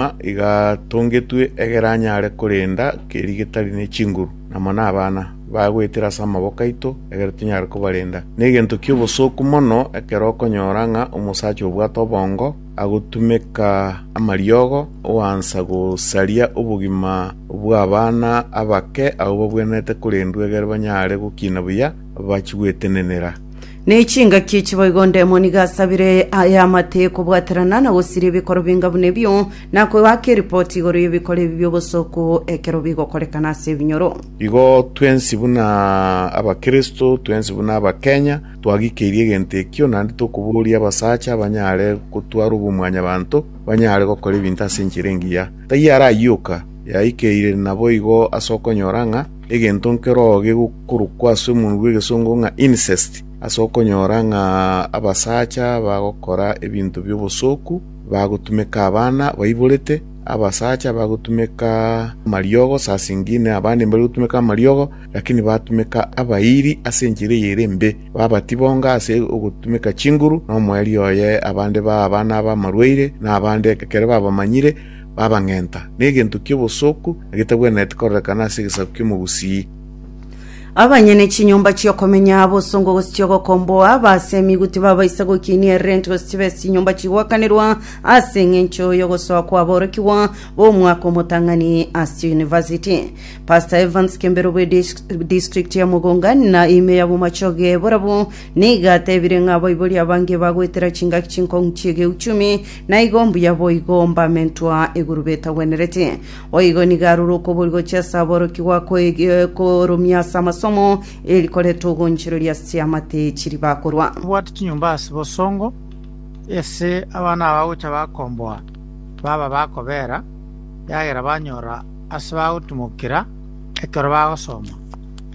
Nyuma igatongetwe egere anyare korenda keri getari ne chinguru, namo nabana bagwetire ase amaboko aito egere tonyare kobarenda. Negento ki'obosooku mono ekero okonyora ng'a omosacha obwate obongo agotumeka amariogo oansa gosaria obogima bw'abana abake abwo babwenerete korendwa egere banyare gokina buya bachigwetenenera. Ne chingaki echi boigo Demon iga asabire aye amate kobwaterana na gosiria ebikoro binga buna ebio, na koaka eripoti igoro y'ebikoro ebi bi'obosoku ekero bigokorekana ase ebinyoro. Igo twensi buna abakristo, twensi buna abakenya twagikeirie egento ekio, naende tokoboria abasacha abanyare gotwara obomwanyabanto banyare gokora ebinto ase enchera engiya. Taiyo arayioka, yaikeire naboigo ase okonyora ng'a egento nkeroo gegokorokwa ase omonwa bw'egesongo ng'a incest, ase okonyora ng'a abasacha bagokora ebinto bi'obosooku, bagotumeka abana baiborete, abasacha bagotumeka amariogo, saa zingine abande mbari gotumeka amariogo, lakini batumeka abairi ase enchera eye ere embe, babatibonga ase ogotumeka chinguru, na omoerio oye abande baa abana ab'amarwaire, na abande ekero babamanyire, babang'enta, negento ki'obosooku na getagwenereti kororekana ase egesaku ki'omogusii. Abanyene chinyomba chi'okomenya, abosongo gose chi'ogokomboa, abasemigwe tibabaisa gokinia erenti gose chibe ase chinyomba chigwakanirwa ase eng'encho y'ogosoa kw'aborokigwa b'omwaka omotang'ani ase chiyunivasiti. Pastor Evans Kembero bwe dis- district ya Mugunga na ime ya Bomachoge borabwo nigo atebire ng'a abaibori abange bagoetera chingaki chinkong'u chi'egeuchumi Naigo mbuya boigo mbame ntwa iguru betagwenereti. Boigo nigo arure okoboria gochia ase aborokigwa korumia ase amasomo, eri koreta ogonchereria ase chiamate chiria bakorwa. Mbwate chinyomba ase bosongo, ase abana abagocha bakomboa baba bakobera, eagera banyora ase bagotimokera ekero bagosoma.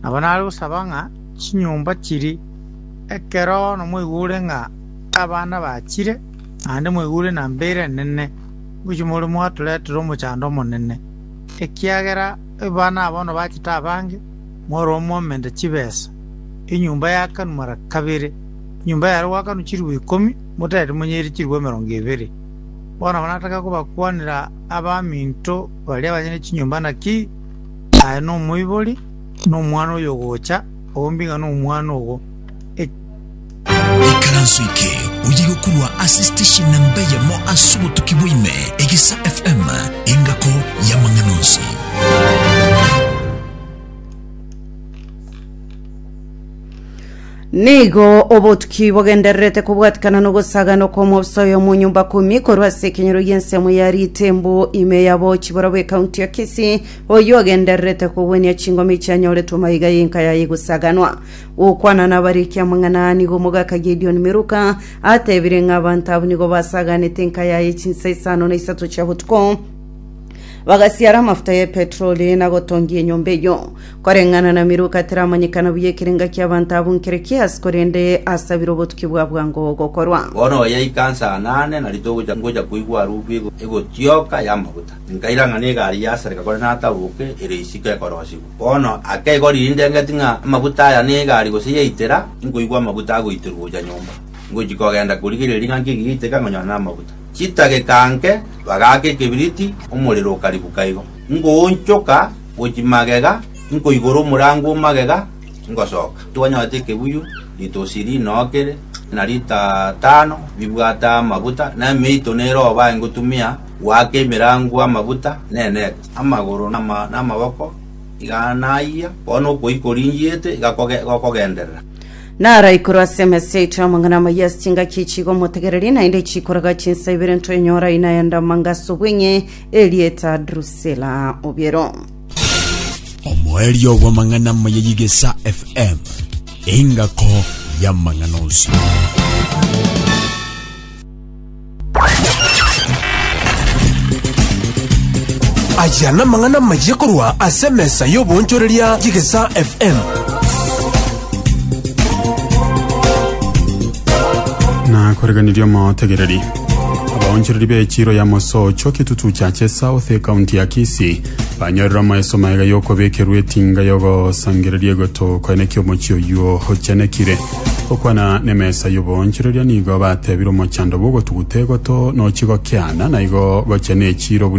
Nabo nare gosaba ng'a chinyomba chiria ekero nomoigure ng'a abana bachire, naende mwaigure na mbeire enene, ngochia more mwatoretera omochando omonene, ekiagera abana aba bono bachete abange, more omomenta chibesa, enyomba yakanwa mara kabere, enyomba yare gwakanwa chiribu ikomi, motereti monyeire chiribu emerongo ebere. Bono nataka kobakwanera abaminto baria banye ne chinyomba naki aye nomoibori, nomwana oyogocha, ombinga nomwana ogo, Ikaranso eke oyegokorwa ase station namba eyemo ase obotuki bwaime, Egesa FM, engako y'amang'ana onsi. Nigo obotuki bogendererete kobwatikana n'ogosagana okw'omobisa oyo mu nyumba kumi korwa ase ekenyero y'ensemo ya ritembo ime ya bochi borobwo ekaunti ya Kisii oyo agendererete kogwenia chingoma echianyoretwe maiga y'enka yaye gosaganwa Gokwana nabare ekiamang'ana nigo omogaka Gideoni Meluka atebire ng'a abanto abwo nigo basaganete enka yaye chinsa isano na isato chia botuko, bagasiara amafuta ye petroli na gotongia enyomba eyio. Koreng'ana na Meluka teramanyekana buya ekerenga ki'abanto abwo nkere ki aase korende asabire obotuki bwa bwango gokorwa. Bono oya ikansa anane na rituko gocha ngocha koigwa harufu ego egotioka y'amaguta. Nkaira ng'a negari yasareka kore natabuke, ere isiko ekorosigwa. Bono ake igo rinde engeti ng'a amaguta aya n'egari gose yaitera, inkoigwa amaguta agoiterwa gocha nyomba. Ingochia kogenda korigereria ng'a nki ekigaiteka nkonyora namaguta. Chidageka nke bagaaka ekebiriti, omorero okaribuka igo. Ingoonchoka gochia magega, inkoigora omorango o magega, ingosoka. Twanyorete ekebuyu, ritosi rinookire, na rita tano bibwate amaguta, na emeito nere obae ngotumia goaka emerango amaguta, na enet. amagoro na ama- na amaboko iganaayia, bono okoyia koringiete igakoge- igokogenderera. Narai korwa ase emesa yaito y'amang'ana amayia ase chingaki echi igo motegererie, naende chikoraga chinsa ibere ntoenyora aina ya Damangas obweng'e, erieta Drusila obiero. Omoerio bw'amang'ana amaya y'Igesa FM, engako y'amang'ana onsi. Ayia namang'ana amayia korwa ase emesa y'oboonchoreria y'Egesaa FM. na koreganirie omotegereri abaonchereri b'echiro ya mosocho kitutu cha chesao the kaunti ya kisi banyorire omoeso maega yokobekerwa etinga yogosangereria egotoka eneki omochio oyuo ochenekire Gokwana nemesa y'oboonchoreria nigo batebire omochando bw'ogotuguta egoto nochi gokiana, naigo gochia nechiiro buna